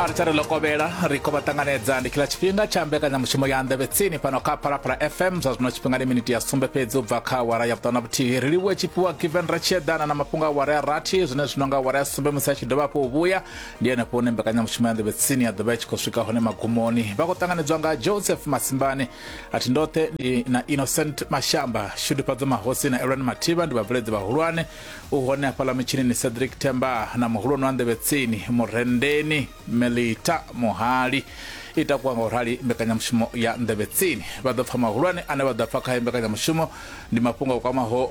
a ri tsari lokovhela ri khou vha ṱanganedza ndi khila tshifhinga tsha mbekanyamushumo ya nḓevhe tsini fhano kha phalaphala fm zwa zwino tshifhinga ndi miniti ya sumbe fhedzi u bva kha wara ya vhuṱanu na vhuthihi ri livhuwe tshifhiwa given ri tshi eḓana na mafhungo a wara ya rathi zwine zwino nga wara ya sumbe musi a tshi dovha hafhu u vhuya ndi henefho hune mbekanyamushumo ya nḓevhe tsini ya ḓovha i tshi khou swika hone magumoni vha khou ṱanganedzwa nga joseph masimbani a thi ndoṱhe ndi na innocent mashamba shudufhadzo mahosi na elwan mathiba ndi vhabveledzi vhahulwane U hone hafhaḽa mutshinini Cedric Themba na muhulwane wa nḓevhe tsini Murendeni Melita Muhali i takuwa nga u rali mbekanyamushumo ya nḓevhe tsini. Vha ḓo pfa mahulwane ane vha ḓo pfa khayo mbekanyamushumo ndi mafhungo a kwamaho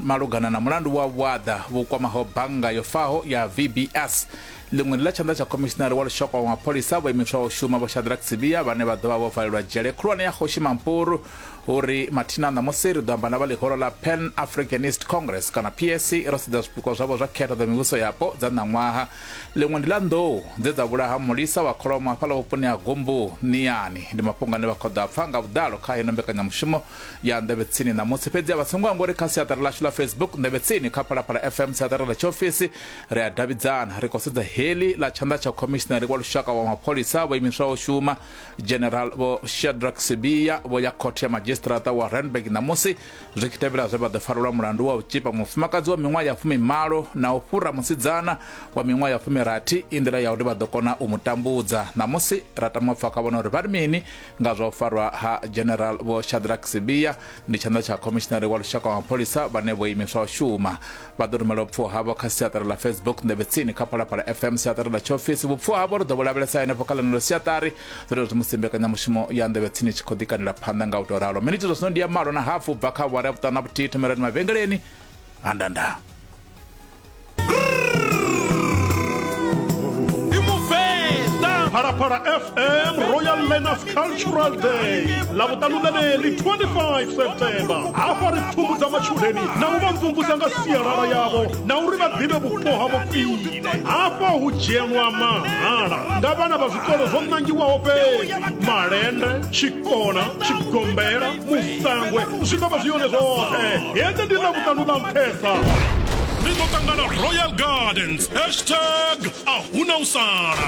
malugana na mulandu wa vhuaḓa vhu kwamaho bannga yo faho ya VBS. Ḽiṅwe ndi ḽa tshanḓa tsha khomishinari wa lushaka wa mapholisa vho imiswaho u shuma Vho Shadrack Sibiya vhane vha ḓo vha vho valelwa dzhele khulwane ya Kgoshi Mampuru hu ri mathina ṋamusi ri ḓo amba na vha ḽihoro ḽa pan africanist congress kana pac ro sedza zwipikwa zwavho zwa khetho dza mivhuso yapo dza ṋaṅwaha ḽiṅwe ndi ḽa nḓou dze dza vhulaha mulisa wa kholomo hafhaḽa vhuponi ha gumbu niyani ndi mafhungo ane vha khoḓa pfa nga vhuḓalo kha heno mbekanyamushumo ya nḓevhe tsini ṋamusi fhedzi a vha songo amba uri kha siaṱari ḽashu ḽa facebook nḓevhe tsini kha phalaphala fm siaṱari ḽa tshiofisi ri a davhidzana ri khou sedza heḽi ḽa tshanḓa tsha khomishinari wa lushaka wa mapholisa vho imiswaho shuma general vho shadrack sibia vho ya khothe ya madzhisiṱiraṱa wa randburg ṋamusi zwi tshi tevhela zwe vha ḓo farelwa mulandu wa u tshipa mufumakadzi wa miṅwaha ya fumimalo na u fhura musidzana wa miṅwaha ya fumirathi i nḓila ya uri vha ḓo kona u mu tambudza ṋamusi ra tama pfa kha vhona uri vha ri mini nga zwa u farwa ha general vho shadrack sibia ndi tshanḓa tsha khomishinari wa lushaka wa mapholisa vhane vho imiswa u shuma vha ḓo rumela vhupfuwa havho kha siaṱari ḽa facebook nḓevhe tsini kha phalaphala fm siaṱari ḽa tshiofisi vhupfuwa havho ri ḓo vho lavhelesa henefho kha ḽeneḽo siaṱari zwo zwi musi mbekanyamushumo ya nḓevhe tsini tshi khou ḓikanela phanḓa nga u tou ralo miniti zwa zwino ndi ya malo na hafu bva kha awara ya vhuṱanu na vhuthihi thomelani mavhengeleni ha ndandaa Phalaphala FM Royal Learners cultural day ḽa vhuṱalukaneli 25 september hafha ri pfumbudza matshudeni na u vha mvumvusa nga sialala yavho na uri vha ḓivhe vhupo havho khwine hafha hu dzhenwa mahala nga vhana vha zwikolo zwo ṋangiwaho fhedzi malende tshikona tshigombela musangwe zwi ḓo vha zwi yone zwoṱhe hedzi ndi ḽa vhuṱanu ḽa nṱhesa ri ḓo ṱangana royal gardens hashtag a huna u sala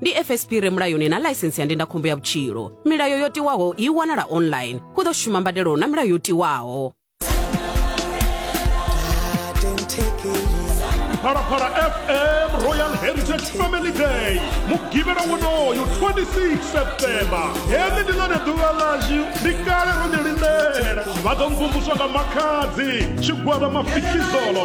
ndi fsp re mulayoni na ḽaisensi ya ndindakhombo ya vhutshilo milayo yo tiwaho i wanala online hu ḓo shuma mbadelo na milayo yo tiwaho phalaphala fm royal heritage family day mugivhela wonoyo 26 septemba heḽi ndi ḽone ḓuvha ḽashu ndi kale ro ḓi lindela vha ḓo mvumvuswa nga makhadzi tshigwada mafikizolo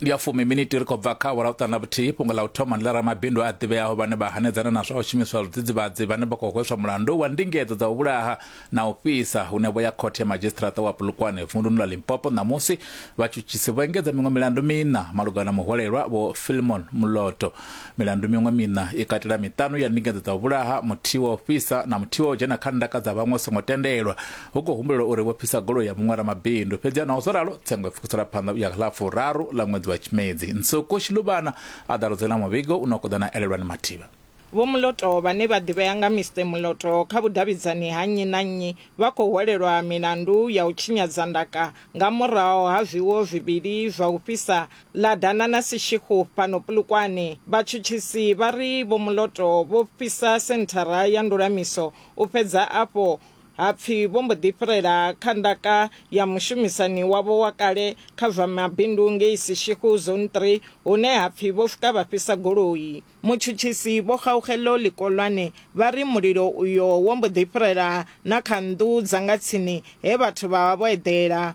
ndi ya fumi miniti ri khou bva kha awara u ṱana vhuthihi fhungo ḽa u thoma ndi ḽa ramabindu a ḓivheaho vhane vha hanedzana na zwa u shumiswa zwidzidzivhadzi vhane vha khou hweswa mulandu wa ndingedzo dza u vhulaha na u fhisa hune vho ya khothe ya madzhisiṱiraṱa wa pulukwane vunduni ḽa limpopo ṋamusi vhatshutshisi vho engedza miṅwe milandu miṋa malugana na muhwalelwa vho filmon muloto milandu miṅwe miṋa i katela miṱanu ya ndingedzo dza u vhulaha muthihi wa u fhisa na muthihi wa u dzhena kha ndaka dza vhaṅwe songo tendelwa hu khou humbulelwa uri vho fhisa goloi ya muṅwe ramabindu fhedzi naho zwo ralo tsengo i pfukisela phanḓa u ya kha ḽa furaru ḽa ṅwedzi wa tshimedzi nsuku shiluvhana a ḓaludzela muvhigo u no kho ḓa na elelwani mathivha Vho Muloto vhane vha ḓivhea nga Mister Muloto kha vhudavhidzani ha nnyi na nnyi vha khou hwelelwa milandu ya u tshinyadza ndaka nga muraho ha zwiwo zwivhili zwa u fhisa ḽa dana na sishikhu fhano Polokwane. Vhatshutshisi vha ri Vho Muloto vho fhisa senthara ya ndulamiso u fhedza afho Ha pfi vho mbo ḓi fhirela kha ndaka ya mushumisani wavho wa kale kha zwa mabindu ngei Seshego Zone Three hune ha pfi vho swika vha fhisa goloi. Mutshutshisi Vho Kgaugelo Likolwane vha ri mulilo uyo wo mbo ḓi fhirela na kha nnḓu dza nga tsini he vhathu vha vha vho eḓela.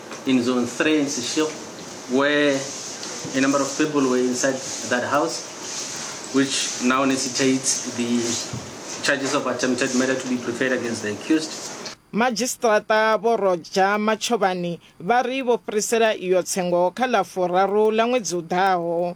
In Zone 3 in Sishil, where a number of people were inside that house, which now necessitates the charges of attempted murder to be preferred against the accused. Madzhisiṱiraṱa Vho Roger Machovhani vha ri vho fhirisela iyo tsengo kha ḽa furaru ḽa ṅwedzi u ḓaho.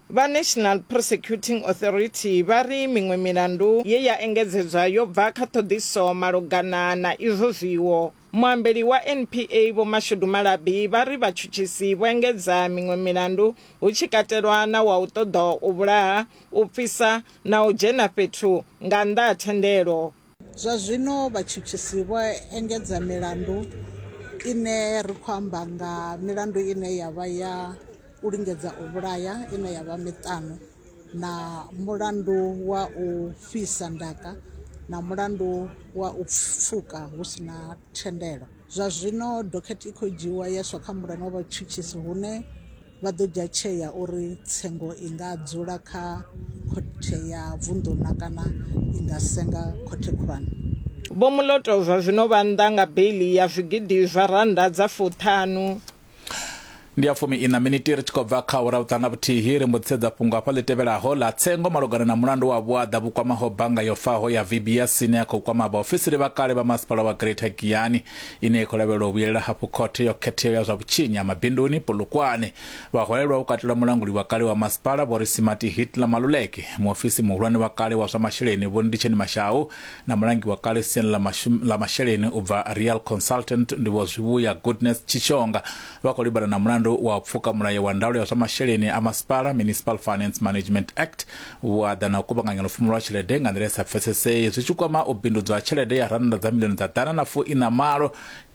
Vha National Prosecuting Authority vha ri miṅwe milandu ye ya engedzedzwa yo bva kha ṱhoḓiso malugana na izwo zwiwo. Muambeli wa NPA Vho Mashudu Malabi vha ri vhatshutshisi vho engedza miṅwe milandu hu tshi katelwa na wa u ṱoḓa u vhulaha, u pfisa na u dzhena fhethu nga nnḓa ha thendelo. Zwa zwino vhatshutshisi vho engedza milandu ine ri khou amba nga milandu ine ya vha ya u lingedza u vhulaya ine ya vha miṱanu na mulandu wa u fhisa ndaka na mulandu wa u pfuka hu si na thendelo. Zwa zwino dokhethe i khou dzhiiwa ya iswa kha mulane wa vhatshutshisi hune. vha ḓo dzhia tsheo ya uri tsengo i nga dzula kha khothe ya vunḓu na kana i nga senga khothe khulwane. Vho Moloto zwa zwino vha nnḓa nga beiḽi ya zwigidi zwa rannda dza fuṱhanu. Ndi ya fumi ina miniti ri tshi khou bva kha awara vhuṱaha nga vhuthihi ri mbo ḓi sedza fhungo hafha ḽi tevhelaho ḽa tsengo malugana na mulandu wa vhuaḓa vhu kwamaho bannga yo faho ya VBS ine ya khou kwama vhaofisiri vha kale vha masipala wa Greater Giyani. ine ya khou lavhelelwa u vhuyelela hafhu khothe yo khetheaho ya zwa vhutshinyi ha mabinduni Polokwane. Vhaholelwa hu katelwa mulanguli wa kale wa masipala Vho Risimati Hitler Maluleke, muofisi muhulwane wa kale wa zwa masheleni Vho Nditsheni Mashau na mulangi wa kale siani ḽa mashum- ḽa masheleni u bva Real Consultant ndi Vho Zwivhuya Goodness Tshishonga vha khou livhana na mulandu wa u pfuka mulayo wa ndaulo ya zwa masheleni a masipala Municipal Finance Management Act Vhuaḓa na u kuvhanganya lufumo lwa tshelede nga nḓila i sa pfesesei zwi tshi kwama u bindudzwa ha tshelede ya rannda dza miḽioni dza ḓana na fu ina malo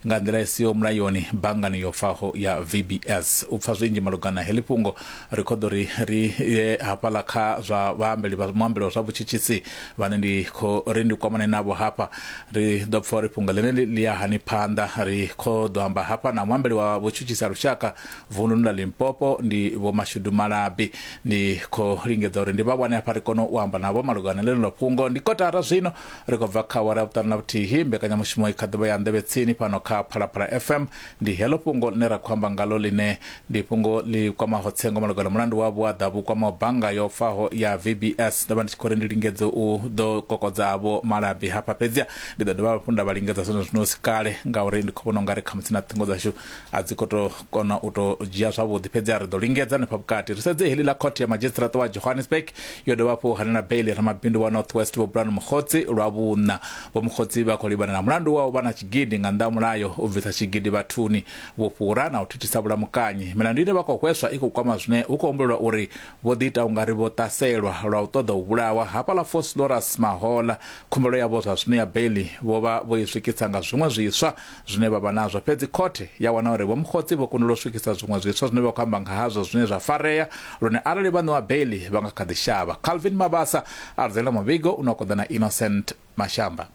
nga nḓila i siho mulayoni banngani yo faho ya VBS. U pfa zwinzhi malugana na heḽi fhungo, ri khou ḓo ri ri ye hafhaḽa kha zwa vhaambeli vha muambeli wa zwa vhutshitshisi vhane ndi khou ri ndi kwamane navho hafha. Ri ḓo pfa uri fhungo ḽeneḽi ḽi ya hani phanḓa. Ri khou ḓo amba hafha na muambeli wa vhutshutshisi ha lushaka vunḓuni ḽa limpopo ndi vhomashudu malabi ndi khou lingedza uri ndi vha wane hafha ri kone u amba navho malugana ḽeneḽo fhungo ndi kotara zwino ri khou bva kha wara vhuṱanu na vhuthihi mbekanyamushumo i kha ḓivha ya nḓevhe tsini fhano kha phalaphala fm ndi heḽo fhungo ḽine ra khou amba ngalo ḽine ndi fhungo ḽi kwamaho tsengo malugana mulandu wa vhuaḓa vhu kwamaho bannga yo faho ya vbs ndo vha ndi tshi khou ri ndi lingedze u ḓo kokodza vho malabi hafha fhedzia ndi ḓo dovha hafhu nda vha lingedza zwino zwino si kale ngauri ndi khou vhona ungari khamusi na ṱhingo dzashu a dzi khou tou kona u tou dzhia zwavhuḓi fhedzi a ri ḓo lingedza hanefha vhukati ri sedze heḽi ḽa khothe ya madzhisiṱiraṱa wa johannesburg yo dovha hafhu hanela beili ramabindu wa north west vho bulani mukgotsi lwa vhuṋa vho mukgotsi vha khou livhana na mulandu wa u vha na tshigidi nga nnḓa ha mulayo u bvisa tshigidi vhathuni vhufhura na u thithisa vhulamukanyi milandu ine vha khou hweswa i khou kwama zwine hu khou humbulelwa uri vho ḓiita ungari vho ṱaselwa lwa u ṱoḓa u vhulawa hafhaḽa foslorus mahola khumbelo yavho zwa zwino ya beili vho vha vho i swikisa nga zwiṅwe zwiswa zwine vha vha nazwo fhedzi khothe ya wana uri vhomkhotsi vho kundelwa u swikisa zwiṅwe zwiswa zwine vha khou amba nga hazwo zwine zwa farea lune arali vha ṋewa beiḽi vha nga kha ḓi shavha calvin mabasa a ludzela muvhigo une wa koḓa na innocent mashamba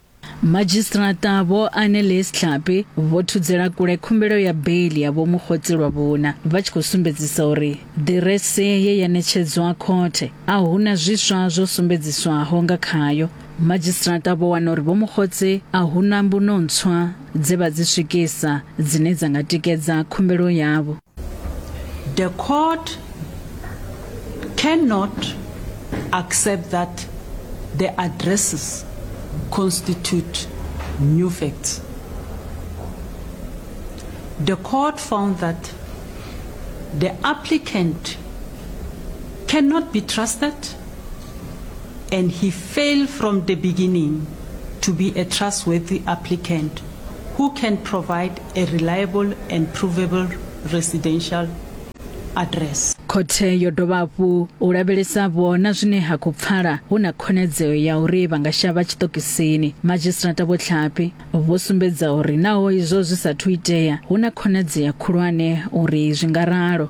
Madzhisiṱiraṱa Vho Annelies Tlhapi vho thudzela kule khumbelo ya beiḽi ya Vho Mokgotsi lwa vhuna vha tshi khou sumbedzisa uri ḓirese ye ya ṋetshedzwa khothe a huna zwiswa zwo sumbedziswaho nga khayo Madzhisiṱiraṱa vho wana uri Vho Mokgotsi a hu na mbuno ntswa dze vha dzi swikisa dzine dza nga tikedza khumbelo yavho. The court cannot accept that the addresses constitute new facts. The court found that the applicant cannot be trusted and he failed from the beginning to be a trustworthy applicant who can provide a reliable and provable residential address. khothe yo dovha hafhu u lavhelesa vhona zwine ha khou pfala hu na khonadzeo ya uri vha nga shavha tshiṱokisini madzhisiṱirata vho tlhapi vho sumbedza uri naho izwo zwi sa thu itea hu na khonadzeo khulwane uri zwi nga ralo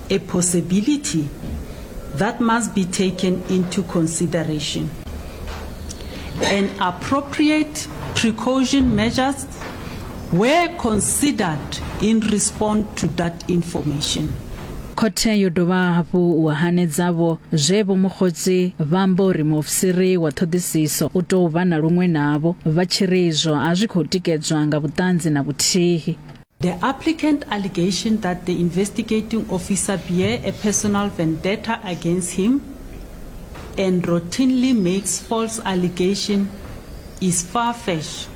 a possibility that must be taken into consideration. And appropriate precaution measures were considered in response to that information. khothe yo dovha hafhu wa hanedzavho zwe vho mukhotsi vha amba uri muofisiri wa ṱhoḓisiso u tou vha na luṅwe navho vha tshi ri izwo a zwi khou tikedzwa nga vhuṱanzi na vhuthihi The applicant allegation that the investigating officer bear a personal vendetta against him and routinely makes false allegation is far-fetched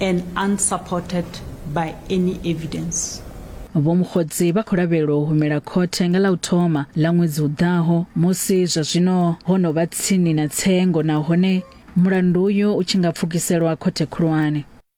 and unsupported by any evidence. Vho Mokgotsi vha khou lavhelelwa u humela khothe nga ḽa u thoma ḽa ṅwedzi u ḓaho musi zwa zwino ho no vha tsini na tsengo nahone mulandu uyu u tshi nga pfukiselwa khothe khulwane.